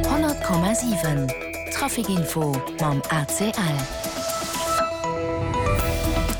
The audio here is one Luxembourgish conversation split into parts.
100,7 Trafic-Info mam ACL.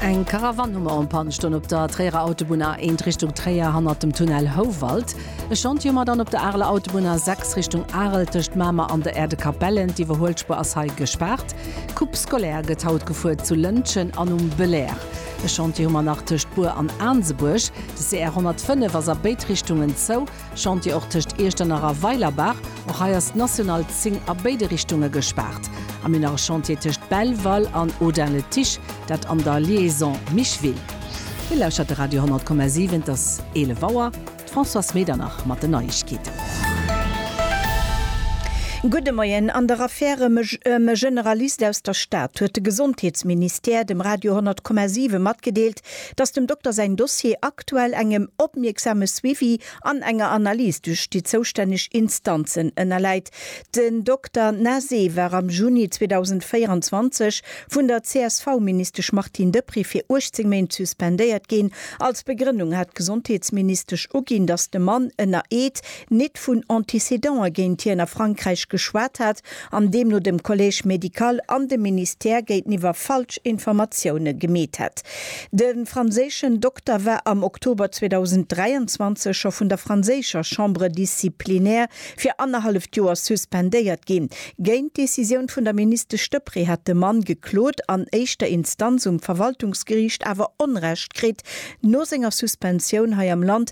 Eng Karavan hu mer en Pann ston op der Tréierer Autobunn A 1 Richtung Tréier hannert dem Tunnel Houwald. E Chantier hu mer dann op der Areler Autobunn A 6 Richtung Arel tëscht Mamer an der Erdekapellen. D'Iwwerhuelspuer ass hei gespaart. D'Coupe scolaire gëtt haut gefuert zu Lëntgen an um Belair. E Chantier hu mer nach tëscht Bur an Aansebuerg. De CR 105 ass a béid Richtungen zou. Chantier och tëscht Iechternach a Weilerbach. Och hei ass d'National 10 a béide Richtunge gespaart. A mir nach e Chantier tëscht Belval an Audun-le-Tiche, dat an der Liaison Micheville. Dir lauschtert de Radio 10,7, et ass 11 Auer. D'Françoise Medernach mat den Neiegkeeten. Gudde Moien. An der Affär ëm e Generalist aus der Stad huet de Gesondheetsministère dem Radio 10,7 matgedeelt, dass dem Dokter säin Dossier aktuell engem opmierksame Suivi an enger Analys duerch déi zoustänneg Instanzen ënnerläit. Den Dokter Nase war am Juni 2024 vun der CSV-Ministesch Martine Deprez fir 18 Méint suspendéiert ginn. Als Begrënnung hat d'Gesondheetsministesch uginn, dass de Mann ënner Eed nit vun Antécédant'e géint hien a Frankräich geschwat hat an deemno dem Collège médical an dem Ministère géinteniwwer falsch Informatioune gemeet hätt. De franséischen Dokter war am Oktober 2023 scho vun der franséischer Chambre disciplinaire fir annerhalleft Joer suspendéiert ginn. Géint d'Decisioun vun der Ministesch Deprez hat de Mann geklot an éischter Instanz um Verwaltungsgeriicht awer Onrecht kritt. No senger Suspensioun hei am Land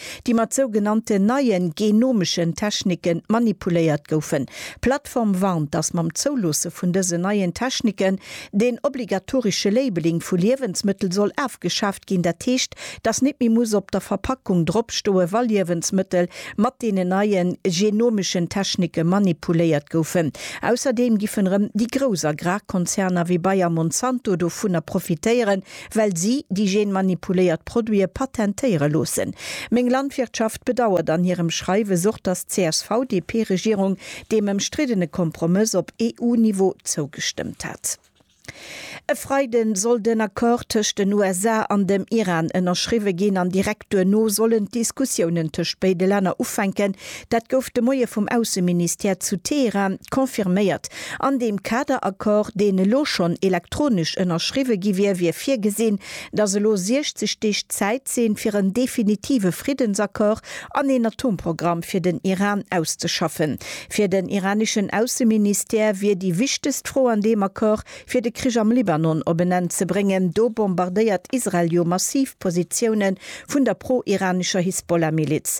déi mat sou genannten neien genomeschen Techniken manipuléiert goufen. D'Plattform warnt, datt mam Zouloosse vun dësen neien Techniken den obligatorische Labeling vu Liewensmëttel soll afgeschaaft ginn, dat heescht, datt net méi muss op der Verpackung drop stoe wa Liewensmëttel mat deenen neien genomeschen Technike manipuléiert goufen. Ausserdeem giffen erëm déi grouss Agrarkonzerner wéi Bayer-Monsanto dovunner profitéieren, well si déi genmanipuléiert Produite patentéiere loossen. Meng Landwirtschaft bedauert an hirem Schreiwes och, datt d'CSV-DP-Regierung deem ëmstriddene Kompromëss op EU-Niveau zougestëmmt hat. E Freide soll den Accord tëscht den USA an dem Iran ënnerschriwwe ginn an direkt duerno sollen d'Diskussiounen tëscht béide Länner ufänken, Dat gouf de Moie vum Ausseministère zu Teheran confirméiert. An deem Kaderaccord, deen elo schonn elektronesch ënnerschriwwe gi wier, wier virgesinn, datt elo 60 Deeg Zäit sinn, fir en definitive Friddensaccord an een Atomprogramm fir den Iran auszeschaffen. Fir den iraneschen Ausseministère wier déi wichtegst Fro an deem Accord, fir de Krich am Libanon op en Enn ze bréngen. Do bombardéiert Israel jo massiv Positioune vun der pro-iranescher Hisbollah-Miliz.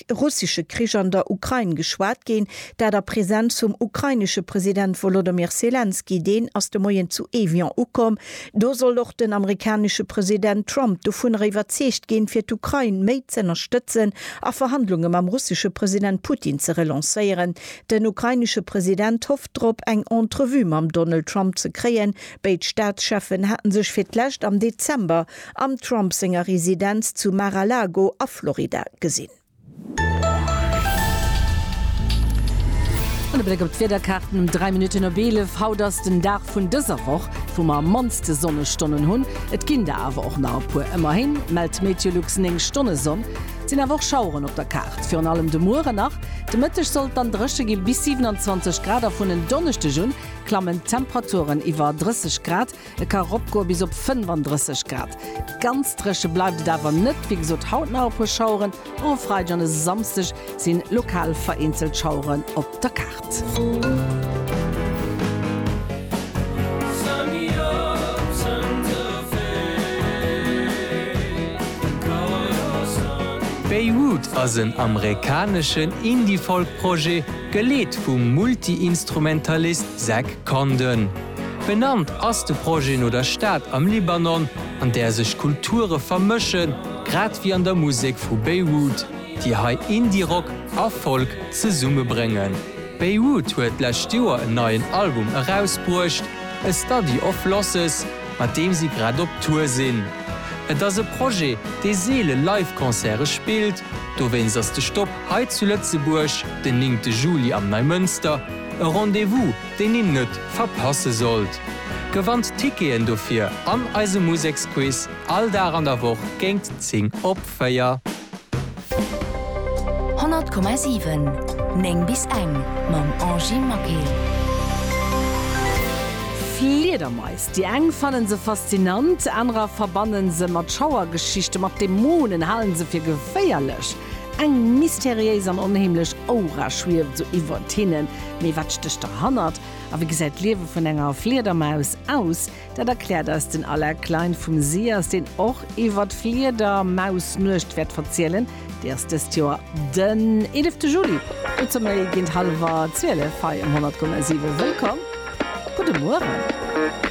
russesche Krich an der Ukrain geschwat ginn, dat a Presenz vum ukrainesche President Wolodymyr Selenskyj, deen ass de Moien zu Evian ukomm. Do soll och den amerikanesche President Trump dovunner iwwerzeegt ginn, fir d'Ukrain méi z'ënnerstëtzen a Verhandlunge mam russesche President Putin ze relancéieren. Den ukrainesche President hofft drop, eng Entrevue mam Donald Trump ze kréien. Béid Staatscheffen hate sech fir d'lescht am Dezember am Trump senger Residenz zu Mar-a-Lago a Florida gesinn. An e Bléck op d'Wiederkaarten um 3 Minutten op 11. Haut ass den Dag vun dëser Woch, wou mer am mannste Sonnestonnen hunn. Et ginn der awer och nach e puer. Ëmmerhin mellt d'Meteolux 9 Stonne Sonn. Et sinn awer och Schaueren op der Kaart, virun allem de Muere nach. De Mëtteg soll et dann dréche gi bis 27 Grad a vun en Donneschdeg un klammen d'Temperaturen iwwer 30 Grad. E ka ropgoe bis op 35 Grad. Ganz dréche bleift et awer net. Wéi gesot, haut nach e puer Schaueren, och e Freideg an e Samsdeg si lokal vereenzelt Schaueren op der Kaart. Beirut ass en amerikaneschen Indie-Folk-Projet, geleet vum Multi-Instrumentalist Zach Condon. Benannt ass de Projet no der Stad am Libanon, an där sech Kulture vermëschen, grad wéi an der Musek vu Beyrouth, déi hei Indie-Rock a Folk zesummebréngen. Beyrouth huet d'lescht Joer en neien Album erausbruecht, A Study of Losses, mat deem si grad op Tour sinn. Et ass e Projet, dee seele Live-Concerte spillt, dowéinst ass de Stop hei zu Lëtzebuerg den néngte Juli am Neimënster e Rendez-vous, deen een net verpasse sollt. Gewannt Ticketen dofir an eise Museksquiz all Dag an der Woch géint 10 op 4. 100,7 9 bis eng mam Angy Maquet. Fliedermais, déi eng fannen se faszinant, anerer verbannen se mat Schauergeschichten, mat Dämonen, halen se fir geféierlech. Eng mysteriéis an onheemlech Aura schwieft esou iwwert hinnen. Mee wat stécht derhannert? A wéi gesäit d'Liewe vun enger Fliedermaus aus? Dat erkläert eis den Alain Klein vum SIAS, deen och iwwer d'Fliedermausnuecht wäert verzielen. Déi ass dëst Joer den 11 Juli. Dozou méi géint hallwer 12 hei um 100,7. Wëllkomm, gudde Mueren.